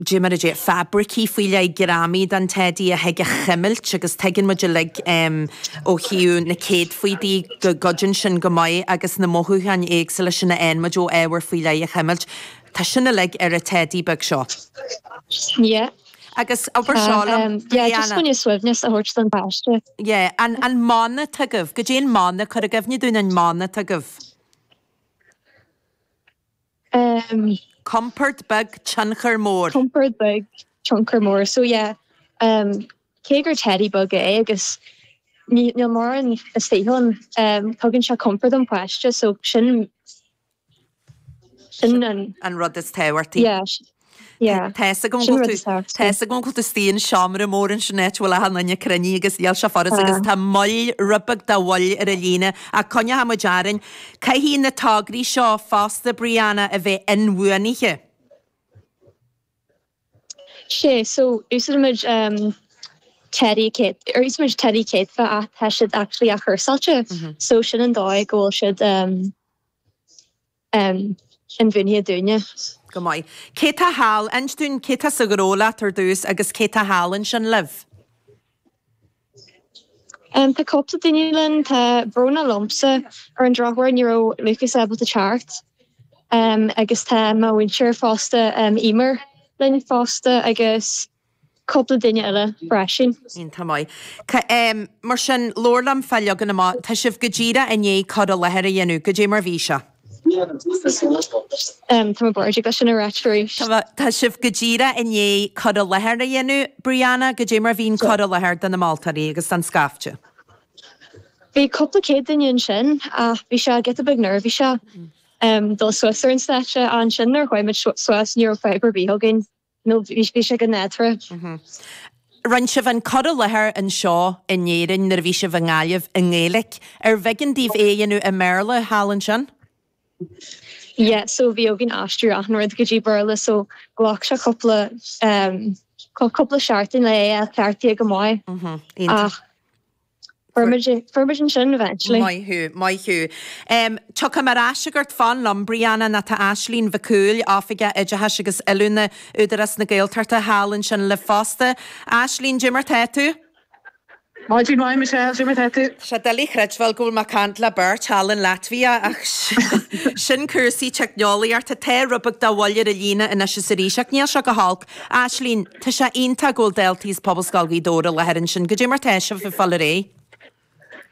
fabraicí faoi leith greamaithe den teidí a thig a chuimilt agus tuigeann muid uilig ó thaobh na gcéadfaí de go gcuidíonn sin go maith agus na mothúcháin éagsúla sin a fhaigheann muid ó ábhar faoi leith a chuimilt. Tá sin uilig ar an teidí beag seo. Yeah. Agus abair seo liom, Brianna. Yeah, I just want suaimhneas a thabhairt don pháiste. Yeah, an, an mana atá agaibh, goidé an mana, cuir i gcuimhne dúinn an mana atá agaibh. Um. Compord beag, tionchar mór. Compord beag, tionchar mór. So yeah, um, cé gur teddy beag é agus níl mórán istigh ann um, tugann sé compord don pháiste so sin sin an... An rud is tábhachtaí? Yeah, Tá's agam go bhfuil tú istigh i seomra mór ansin níl an líne chomh cruinn agus níl sé furast agus tá moill, rud beag de mhoill ar an líne. Ach coinneochaidh muid orainn. Caithfidh na tograí seo fosta, Brianna, a bheith inbhuanaithe. Sea, so úsáidimid Teddy céadfach, úsáidimid Teddy céadfach ach tá siad actually athchúrsáilte. So sin an dóigh go bhfuil siad. um inbhuanaithe. Go maith. Cé tá thall? Inis dúinn cé tá sa ghnó leat ar dtús agus cé tá thall ansin libh? Um tá cúpla duine linn, tá Bróna liomsa, ar an drochuair ní raibh Lucas ábalta teacht, um agus tá mo mhúinteoir fosta, um Eimear linn fosta agus. cúpla duine eile freisin. Go maith. Mar sin, labhair liom fá leagan amach. Tá sibh go díreach i ndiaidh cur i láthair a dhéanamh. Goidé mar bhí sé? Tá mé buartha, abair sin arís. Tá sibh go díreach i ndiaidh cur i láthair a dhéanamh. Brianna, goidé mar bhí an cur i láthair do na moltóirí agus don scaifte? Bhí cúpla céad duine ansin ach bhí sé giota beag neirbhíseach ag dul suas ar an stáitse. Ansin nuair a chuaigh muid suas ní raibh fadhb ar bith againn. No, bhí bhí sé go hiontach. Mhm. Rinne sibh an cur i láthair anseo in Éirinn nuair a bhí sibh i nGaillimh i nGaeilic. Arbh éigean daoibh é a dhéanamh i mBéarla thall ansin? Yeah, so bhí orainn aistriú achan rud go dtí Béarla so ghlac sé cúpla em, cú- cúpla seachtain le é a cheartú go maith. Mhm. Iontach. Ach. Fuair muid ansin eventually. Maith thú, maith thú. Tiocfaidh mé ar ais chugat, fan liom, Brianna, nó tá Aisling Mhic Cumhaill, Oifigeach Oideachais agus Oiliúna, Údarás na Gaeltachta, thall ansin libh fosta. Aisling, goidé mar tá tú? Go maith, go maith, Michelle, goidé mar tá tú? Sea, doiligh a chreidbheáil go bhfuil mé ag caint le beirt thall in Laitvia, ach sin cúrsaí teicneolaíochta. Tá rud beag de mhoill ar an líne anois is arís, ach níl sé go holc. Aislínn, Tá sé iontach go bhfuil daltaí as Pobalscoil Ghaoth Dobhair i láthair ansin. Cad é mar tá sibh ag fáil ar aghaidh?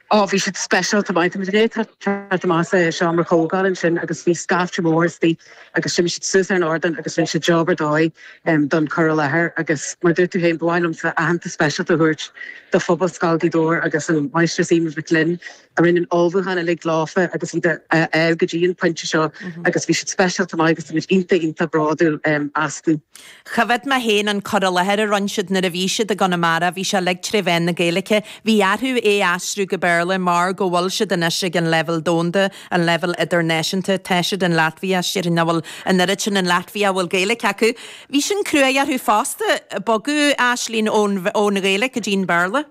Ó, bhí siad speisialta maith. Tá muid i ndiaidh teacht amach as an seomra comhdháil ansin agus bhí scaifte mór istigh agus shuigh siad suas ar an ardán agus rinne siad job ar dóigh don cur i láthair agus mar a dúirt tú féin, ba mhaith liomsa aitheantas speisialta a thabhairt do Phobalscoil Ghaoth Dobhair agus an Máistreás Emma Mhic Fhloinn. a rinne an ullmhúchán uilig leofa agus iad a fháil go dtí an pointe seo agus bhí siad speisialta maith agus tá muid iontach iontach bródúil astu. Choimhead mé féin an cur i láthair a rinne siad nuair a bhí siad i gConamara, bhí sé uilig tré mheán na Gaeilge. Bhí orthu é a aistriú go Béarla mar go bhfuil siad anois ag an leibhéal domhanda, an leibhéal idirnáisiúnta. Tá siad in Latvia, sílim nach bhfuil an oiread sin in Latvia a bhfuil Gaeilge acu. Bhí sin cruaidh orthu fosta, bogadh Aislínn ón Ghaeilge go dtí an Béarla.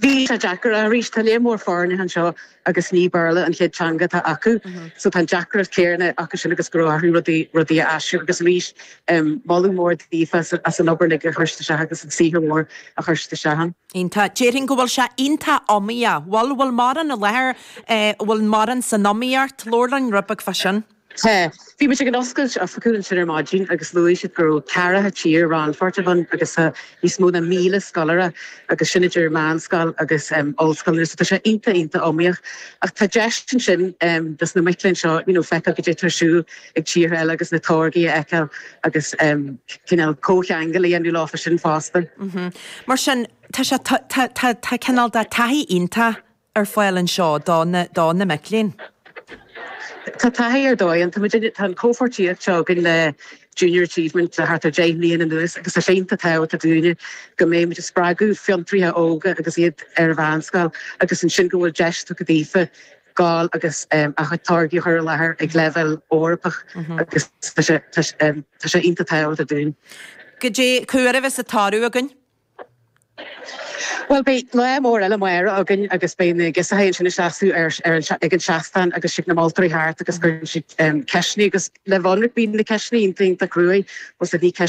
Bhí sé deacair arís. Tá líon mór foirne anseo agus ní Béarla an chéad teanga atá acu. So tá an deacracht chéanna acu sin agus go raibh orthu rudaí, rudaí a aistriú agus arís em, moladh mór daofa as, as an obair uilig a chuir siad isteach agus an saothar mór a chuir siad isteach ann. Iontach. Déarfainn go bhfuil sé iontach iomaíoch. Bhfuil, bhfuil mórán i láthair eh, bhfuil mórán san iomaíocht, labhair linn rud beag fá sin? Tá. Bhí muid ag an oscailt oifigiúil ansin ar maidin agus luaigh siad go raibh ceathracha tír rannpháirteach ann agus tá níos mó ná míle scoláire agus sin idir meánscoil agus ollscoileanna so tá sé iontach, iontach iomaíoch ach tá deis ansin dos na mic léinn seo you know feiceáil cad é atá ar siúl ag tíortha eile agus na táirgí a fheiceáil agus cineál comhcheangal a dhéanamh leofa sin fosta. Mar sin, tá sé, tá cineál de taithí iontach ar fáil anseo do na mic léinn. Tá taithí ar dóigh ann, tá an chomhpháirtíocht seo againn le Junior Achievement le thart ar 10 mbliana anuas agus tá sé iontach tábhachtach dúinne go mbeimid ag spreagadh fiontraithe óga agus iad ar an mheánscoil agus ansin go bhfuil deis tugtha daofa gabháil agus a gcuid táirgí a chur i láthair ag leibhéal Eorpach agus tá sé iontach tábhachtach dúinne. Cad é, cá huair a bheas an toradh againn? Bhuel, beidh lá mór eile amárach againn agus beidh na girseachaí ansin ag seasamh ag an seastán agus tiocfaidh na moltóirí thart agus cuirfidh siad ceisteanna agus le bheith ionraic beidh na ceisteanna, iontach, iontach cruaidh, bhuel, sea, bhí.